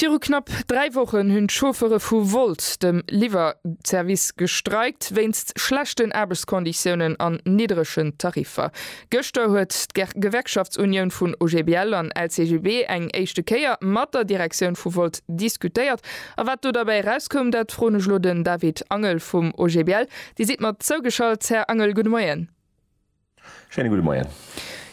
Viru knapp dräi Wochen hunn d'Chauffere vu Wolt, dem Liwwerservice, gestreikt, wéinst schlechten Aarbechtskonditiounen an niddregen Tariffer. Gëschter huet d'Gewerkschaftsunioun vun OGBL an LCGB eng éischte Kéier mat der Direktioun vu Wolt diskutéiert. A wat do derbäi erauskoum, dat froen ech elo den David Angel vum OGBL. Dir sidd mat zougeschalt, Här Angel. Gudde Moien. Schéine gudde Moien.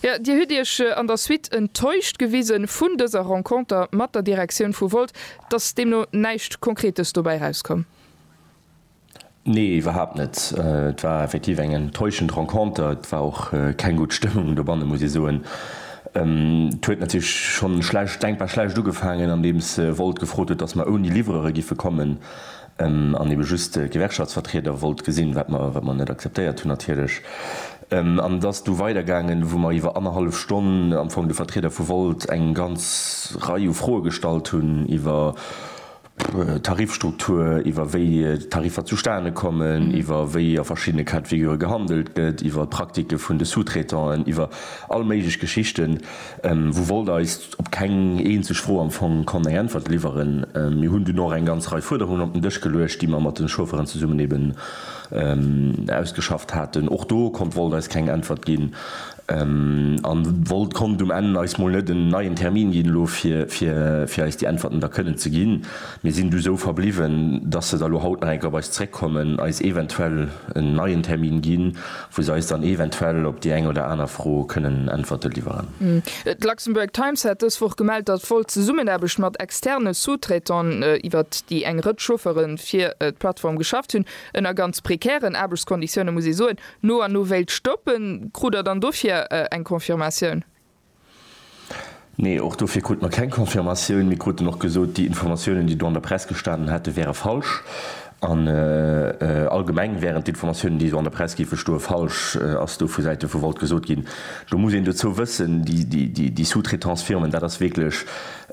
Jo, Dir hutt Iech an der Suite enttäuscht gewise vun dëser Renconter mat der Direktioun vu Volt. Et ass deemno näischt Konkretes dobäi erauskomm? Nee, iwwerhaapt net. Et war effektiv eng enttäuschend Renconter. Et war och keng gutt Stëmmung dobanne, muss ee soen. Et huet natierlech schonn schlecht, denkbar schlecht ugefaangen, andeems Volt gefrot huet, datt mer ouni Liwwerere giffe kommen. An ebe just de Gewerkschaftsvertrieder wollt gesinn, wat mer, wat mer net akzeptéiert hunn natierlech. An et ass du weidergaangen, wou mer iwwer annerhallef Stonn am Fong de Vertrieder vu Volt eng ganz Rei u Froe gestallt hunn iwwer d'Tarifstruktur, iwwer wéi d'Tariffer zustane kommen, iwwer wéi a verschiddene Cas de figure gehandelt gëtt, iwwer d'Praktike vun de Sous-traitanten, iwwer all méiglech Geschichten. Wou wollt eis op keng eenzeg Fro am Fong konnt eng Äntwert liwweren. Mir hunn dunn och eng ganz Rei Fuerderungen op den Dësch geluecht, déi mer mat den Chaufferen zesummen eben ausgeschafft haten. Och do konnt wollt eis keng Äntwert ginn an wollt konnt um Enn eis mol net en neien Termin ginn elo fir eis déi Äntwerten da kënnen ze ginn. Mir sinn du sou verbliwwen, dass se da lo haut nach eng Kéier op eis zréckkommen, eis eventuell en neien Termin ginn wou se eis dann eventuell op déi eng oder aner Fro kënnen Äntwerte liwweren. D'Luxembourg Times hat dës Woch gemellt, datt voll Zesummenaarbecht mat externe Sous-traitants, iwwer déi eng Rëtsch Chauffere fir d'Plattform geschafft hunn, ënner ganz prekären Aarbechtskonditioune muss ee soen, no an no wéilt stoppen. Krut Der dann dofir eng Confirmatioun? Nee, och dofir krute mer keng Confirmatioun. Mir kruten och gesot, déi Informatiounen, déi do an der Press gestanen hätten, wäre falsch. An allgemeng wären d'Informatiounen, déi esou an der Press géife stoe falsch, ass do vu Säite vu Volt gesot ginn. Do muss een dozou wëssen, déi Sous-traitance-Firmen, dat ass wierklech,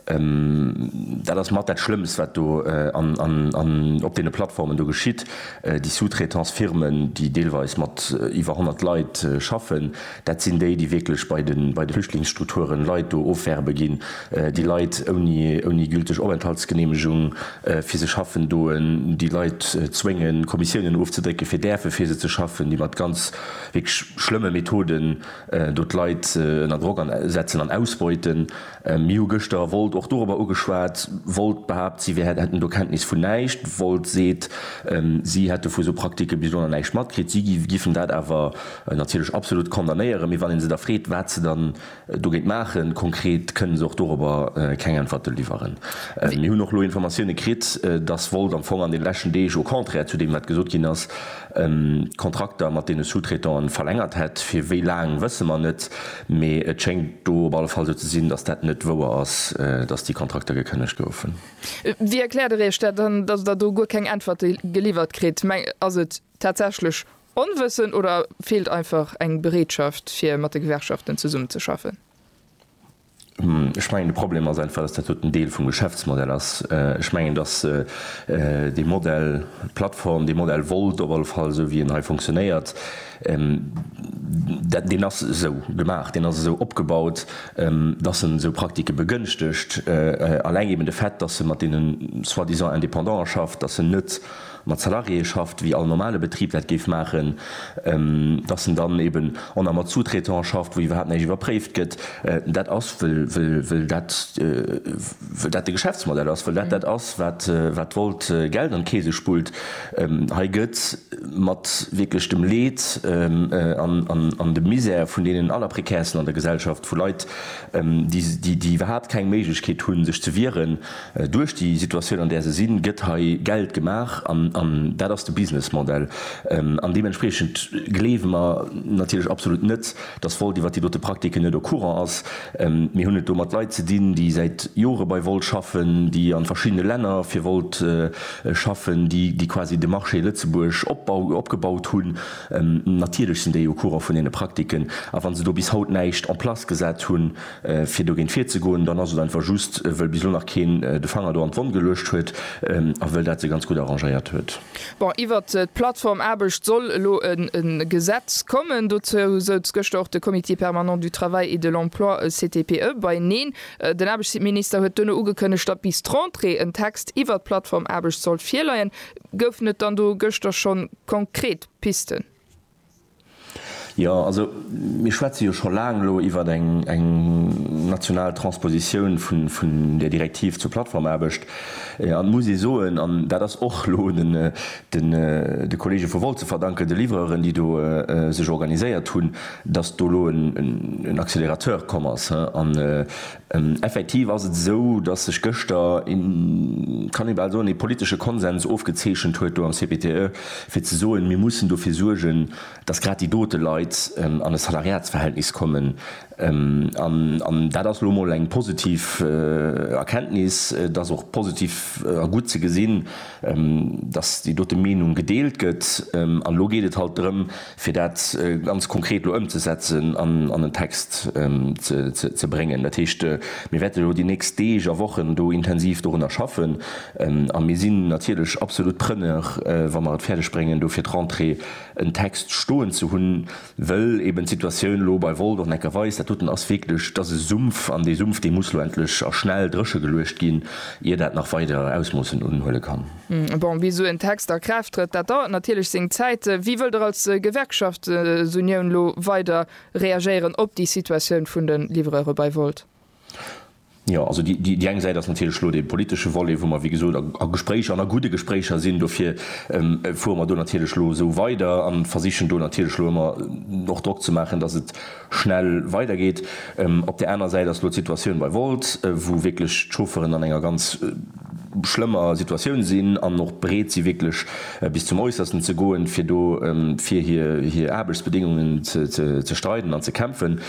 dat ass mat dat Schlëmmst, wat do op deene Plattformen do geschitt. Déi Sous-traitance-Firmen, déi deelweis mat iwwer 100 Leit schaffen, Dat sinn déi, déi wierklech bei de Flüchtlingsstrukturen Leit do ofwerbe ginn, déi Leit ouni gülteg Openthaltsgeneemegung fir se schaffen doen, déi Leit zwéngen, d'Kommissiounen ofzedrécken, fir däerfe fir se ze schaffen, déi mat ganz wierklech schlëmme Methoden do d'Leit ënner Drock setzen an ausbeuten. Mir hu gëschter Volt och dorobber ugeschwat. Volt behaapt, si wär, hätten do Kenntnis vun näischt. Volt seet, si hätte vu sou Praktike bis dono näischt matkritt. Si giffen dat awer natierlech absolut condamnéieren. Mee wann ee se da freet, wat se dann dogéint maachen, konkret, kënnen se och dorobber keng Äntwerte liwweren. Mir hunn och elo Informatioune kritt, dass Volt am Fong an de leschten Deeg, au contraire zu deem wat gesot ginn ass, D'Kontrakter mat deene Sous-traitanten verlängert hätt. Fir wéi laang wësse mer net, mee et schéngt do op alle Fall sou ze sinn, datt dat net wouer ass, datt déi Kontrakter gekënnegt goufen. Wéi erkläert Der Iech dat dann, datt Der do guer keng Äntwerte geliwwert kritt? Ass et tatsächlech Onwëssen oder feelt einfach eng Bereetschaft fir mat de Gewerkschaften zesummenzeschaffen? Ech mengen, de Problem ass einfach, dass dat dot en Deel vum Geschäftsmodell ass. Ech mengen, dass dee Modell, d'Plattform, dee Modell wollt op alle Fall, esou wéi en hei funktionéiert, dat, deen ass esou gemaach, deen ass esou opgebaut, dass en esou Praktike begënschtegt. Alleng eben de Fait, dass e mat deenen soi-disant Indépendante schafft, dass en net mat Salariéë schafft, wéi all normale Betrib dat géif maachen, dass en dann eben en a mat Sous-traitante schafft, wou iwwerhaapt näischt iwwerpréift gëtt. Dat ass, wëll dat de Geschäftsmodell ass, wëll dat dat ass, wat Volt Geld an d'Keese spullt. Hei gëtt mat wierklech dem Leed an dem Misär vun deenen Allerprekärsten an der Gesellschaft, vu Leit, déi iwwerhaapt keng Méiglechkeet hunn, sech ze wieren, Duerch déi Situatioun, an där se sinn, gëtt hei Geld gemaach. An dat ass de Businessmodell. An deementspriechend gleewe mer natierlech absolut net, dass Volt iwwert déi dote Praktiken net au courant ass. Mir hunn et do mat Leit ze dinn, déi säit Jore bei Volt schaffen, déi a verschiddene Länner fir Volt schaffen, déi quasi de Marché Lëtzebuerg opgebaut hunn. Natierlech sinn déi au courant vun deene Praktiken. A wa se do bis haut näischt en place gesat hunn, fir dogéint virzegoen, dann ass et einfach just, wëll bis elo nach keen de Fanger do an d'Wonn geluecht huet a wëll dat se ganz gutt arrangéiert huet. Bon, iwwert d'Plattform Aarbecht soll elo e Gesetz kommen. Dozou souz gëschter och de Comité permanent du travail et de l'emploi, CTPE, beineen. Den Aarbechtsminister huet duerno ugekënnegt, datt bis d'Rentrée en Text iwwert d'Plattform Aarbecht sollt virleien. Goufen et dann do gëschter schonn konkret Pisten? Jo, also mir schwätze jo scho laang elo iwwert eng national Transpositioun vun där Direktiv zur Plattformaarbecht. An et muss ee soen, an dat ass och elo de Kollege vu Volt ze verdanken, de Livreuren, déi do sech organiséiert hunn, datt do elo en Accélérateur komm ass. Effektiv ass et esou, datt sech gëschter, kann ee bal soen, ee politesche Konsens ofgezeechent huet do am CPTE, fir ze soen, mir mussen dofir suergen, datt grad déi dote Leit an e Salariatsverhältnis kommen. An dat ass elo emol eng positiv Erkenntnis. Et ass och positiv a gutt ze gesinn, datt déi dote Meenung gedeelt gëtt. An elo geet et halt drëm, fir dat ganz konkret elo ëmzesetzen an an en Text ze bréngen. Dat heescht, mir wäerten elo déi nächst Deeg a Wochen do intensiv dorunner schaffen a mir sinn natierlech absolut Preneur, wa mer et fäerdeg bréngen, do fir d'Rentrée en Text stoen ze hunn, wëll eeben d'Situatioun elo bei Wolldorf, Neckar, Weis, dat doten ass wierklech, dat ass e Sumpf an dee Sumpf, dee muss elo endlech a schnell dréchegeluecht ginn, ier dat nach weider Ausmoossen unhuele kann. Bon, bis esou en Text a Kraaft trëtt, dat dauert natierlech seng Zäit. Wéi wëllt Der als Gewerkschaftsunioun elo weider reagéieren op déi Situatioun vun de Livreure bei Volt? Jo, also déi eng Säit ass natierlech elo dee politesche Volet, wou mer, wéi gesot, a Gespréicher an a gudde Gespréicher sinn. Dofir fuere mer do natierlech elo esou weider a versichen do natierlech elo ëmmer och Drock ze maachen, datt et schnell weidergeet. Op där anerer Säit ass elo d'Situatioun bei Wolt, wou wierklech d'Chaufferen an enger ganz schlëmmer Situatioun sinn an och bereet si wierklech bis zum Äussersten ze goen, fir do fir hir Aarbechtsbedéngungen ze streiden an ze kämpfen.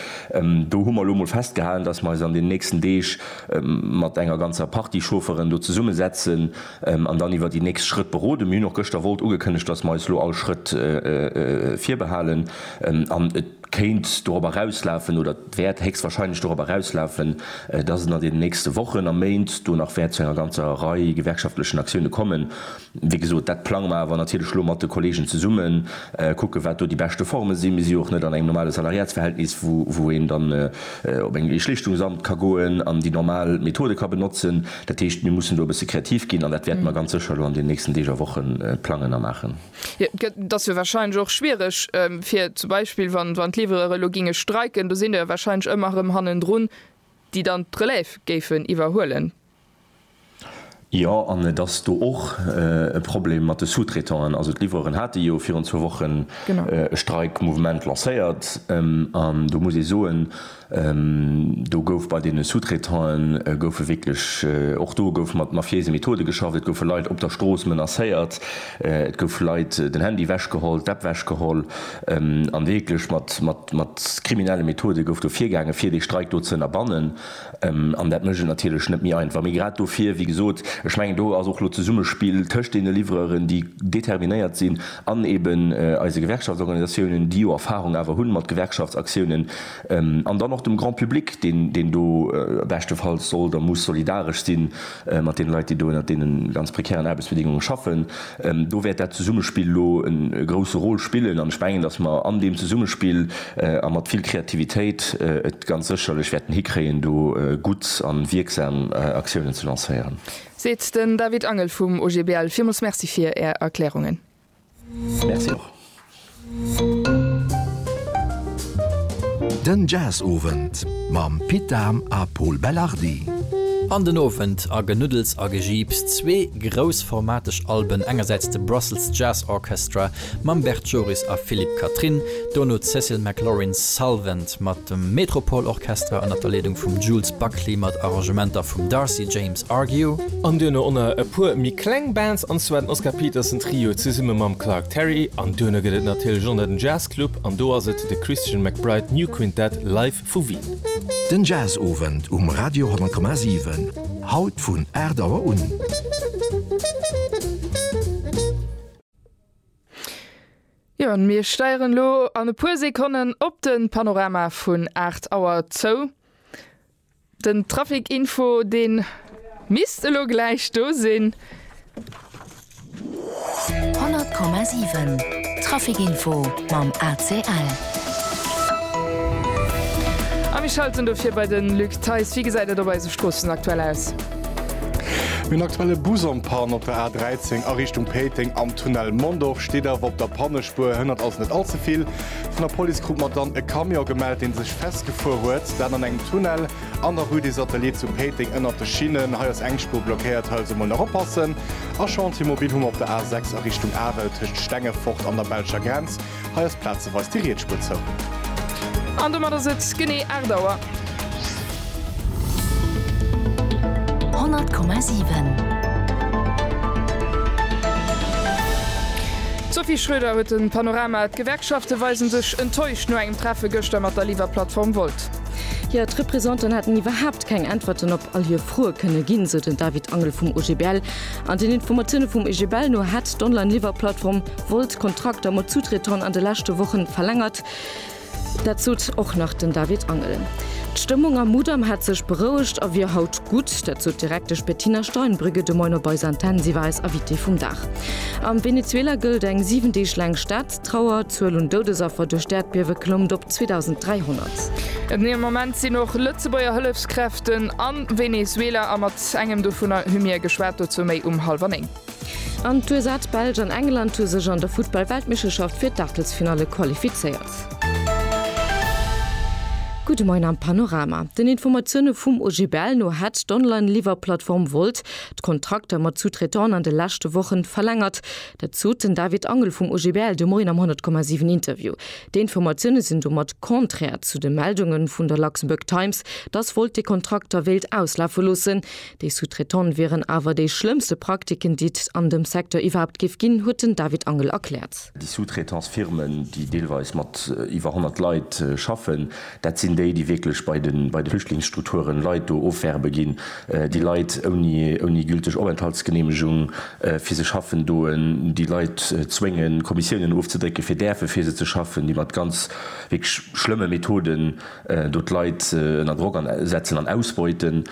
Do hu mer elo emol festgehalen, dass mer eis an deenen nächsten Deeg mat enger ganzer Partie Chaufferen do zesummesetzen an dann iwwer déi nächst Schrëtt beroden. Mir hunn och gëschter Wolt ugekënnegt, dass mer eis elo all Schrëtt virbehalen an et, kéint dorop erauslafen oder wäert héchstwahrscheinlech dorop erauslafen, dass et an deenen nächste Wochen a Méint do nach wäert zu enger ganzer Rei gewerkschaftlechen Aktioune kommen. Wéi gesot, dat plange mer awer natierlech elo mat de Kolleegen zesummen, kucke wat do déi beschte Forme sinn. Mir si jo och net an engem normale Salariatsverhältnis, wou een dann op eng ee Schlichtungsamt ka goen an déi normal Methode ka benotzen. Dat heescht, mir mussen do e bësse kreativ ginn an dat wäerte mer ganz sécher elo an deenen nächsten Deeg a Woche plangen a maachen. Et ass jo warscheinlech och schwiereg, fir zum Beispill, wann d'Liwwereure elo géinge streiken, do sinn der jo warscheinlech ëmmer erëm hannendrun, déi dann d'Relève géifen iwwerhuelen. Jo, an et ass do och e Problem mat de Sous-traitanten. Also d'Liwwereure hate jo virun zwou Wochen e Streikmouvement lancéiert an do muss ee soen, Do gouf bei deene Sous-traitanen goufe wierklech, och do gouf mat mafiéise Methode geschafft. Et goufe Leit op der Strooss menacéiert, et gouf Leit den Handy ewech geholl, d'App ewech geholl a wierklech mat kriminelle Methode gouf do virgaangen, fir dee Streik do ze ënnerbannen. An dat mécht et natierlech net méi einfach. Mee grad dofir, wéi gesot, ech mengen do ass och elo d'Zesummespill tëscht deene Livreuren, déi determinéiert sinn, an eeben eise Gewerkschaftsorganisatiounen, déi jo Erfarung awer hu mat Gewerkschaftsaktiounen, An dann och dem Grand public, deen, deen do beschtefalls soll a muss solidaresch si mat deene Leit, déi do ënnert deene ganz prekären Aarbechtsbedingungen schaffen. Do wäert dat Zesummespill elo e grouse Rôle spillen an ech mengen, dass mer an deem Zesummespill a mat vill Kreativitéit et ganz sécherlech wäerten hikréien, do gutt a wierksam Aktiounen ze lancéieren. Seet den David Angel vum OGBL. Villmools Merci fir Är Erklärungen. Merci och. Den Jazzowend mam Pit Dahm a Pol Belardi. An den Owend a Genuddels a Gejiips, zwee groussformateg Alben, engersäits de Brussels Jazz Orchestra mam Bert Joris a Philippe Catherine, dono d'Cecil McLorin Salvant mat dem Metropole Orchestra ënner der Leedung vum Jules Buckley mat Arrangementer vum Darcy James Argue. An duerno o nach e puer méi kleng Bands, an zwar den Oscar Peterson Trio zesumme mam Clark Terry, an duerno gëtt et natierlech o nach den Jazz Club, an do ass et de Christian McBride New Quintet live vu Wien. Den Jazzowend um Radio 100,7, haut vun 8 Auer un. Jo, an mir steieren elo an e puer Sekonnen op den Panorama vun 8 Auer zou. Den Trafic Info deen misst elo gläich do sinn. 100,7 Trafic Info mam ACL. A mir schalten dofir bei den Luc Theis. Wéi gesäit et op eise Stroossen aktuell aus? Mir hunn aktuelle Bus en panne op der A13 a Richtung Péiteng am Tunnel Mondorf. Steet awer op der Pannespuer, hënnert also net all ze vill. Vun der Police krut mer dann e Camion gemellt, dee sech festgefuer huet. Dat an engem Tunnel an der Rue des Ateliers zu Péiteng ënnert de Schinnen. Hei ass eng Spuer blockéiert, hei also mol nach oppassen. A Chantier mobil hu mer op der A 6 a Richtung Arel tëscht Stengefort an der belscher Grenz. Hei ass plazeweis déi riets Spuer zou. An domat ass et genee 8 Auer. 100,7. D'Sophie Schröder huet den Panorama. D'Gewerkschafte weisen sech enttäuscht no engem Treffe gëschter mat der Liwwerplattform Volt. Hir d'Representan hätten iwwerhaapt keng Äntwerten op all hir Froe kënne ginn, sou den David Angel vum OGBL. An den Informatioune vum OGBL no hätt d'Online-Liwwerplattform Volt Kontrakter mat Sous-Traitante an de leschte Wochen verlängert. Dat sot och nach den David Angel. D'Stëmmung am Mudam hätt sech berouegt a wier haut gutt. Dat sot d'Direktesch Bettina Steinbrügge de Moin op eis Antenn. Si war eis Invitée vum Dag. Am Venezuela gëllt eng 7 Deeg laang Staatstrauer. D'Zuel un Doudesaffer duerch d'Äerdbiewe klommt op 2.300. Den ee Moment sinn och Lëtzebuerger Hëllefskräften a Venezuela a mat engem dovunner hu mir geschwat. Dozou méi um hallwer néng. An d'USA, d'Belsch an England hu sech an der Futtball-Weltmeeschterschaft fir d'Aachtelsfinalle qualifizéiert. Gudde Moien am Panorama. Den Informatioune vum OGBL no hätt d'Online-Liwwerplattform Wolt d'Kontrakter mat Sous-Traitanten an de leschte Woche verlängert. Dat sot den David Angel vum OGBL de Moien am 10,7 Interview. Déi Informatioune sinn domat contraire zu de Meldunge vun der Luxembourg Times, datt Wolt déi Kontrakter wéilt auslafe loossen. Déi Sous-traitante wieren awer déi schlëmmste Praktiken, déi et an dem Secteur iwwerhaapt géif ginn, huet den David Angel erkläert. Déi Sous-traitance-Firmen, déi deelweis mat iwwer 100 Leit schaffen, dat sinn déi, déi wierklech bei de Flüchtlingsstrukturen Leit do ofwerbe ginn, déi Leit ouni gülteg Openthaltsgeneemegung fir se schaffen doen, déi Leit zwéngen, Kommissiounen ofzedrécken, fir däerfe fir se ze schaffen, déi mat ganz wierklech schlëmme Methoden do d'Leit ënner Drock setzen an ausbeuten.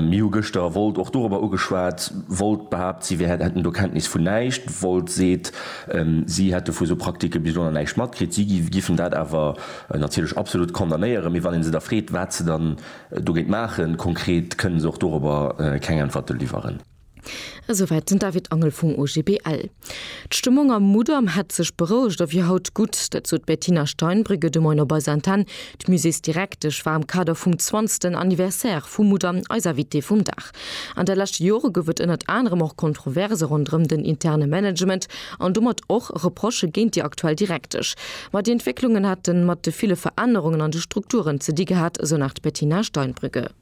Mir hu gëschter Volt och dorobber ugeschwat. Volt behaapt, si wär, hätten do Kenntnis vun näischt. Volt seet, si hätte vu sou Praktike bis dono näischt matkritt. Si giffen dat awer natierlech absolut condamnéieren. Mee wann ee se da freet, wat se dann dogéint maachen, konkret, kënnen se och dorobber keng Äntwerte liwweren. Esouwäit den David Angel vum OGBL. D'Stëmmung am Mudam hätt sech berouegt a wier haut gutt. Dat sot d'Bettina Steinbrügge de Moin op eiser Antenn. D'Muséesdirektesch war am Kader vum zwanzegsten Anniversaire vum Mudam eis Invitée vum Dag. An de leschte Jore gouf et ënnert anerem och Kontroverse ronderëm den interne Management an domat och Reprochë géint déi aktuell Direktesch. Ma déi Entwécklungen hätte mat de ville Verännerungen an de Strukturen ze di gehat, esou nach d'Bettina Steinbrügge.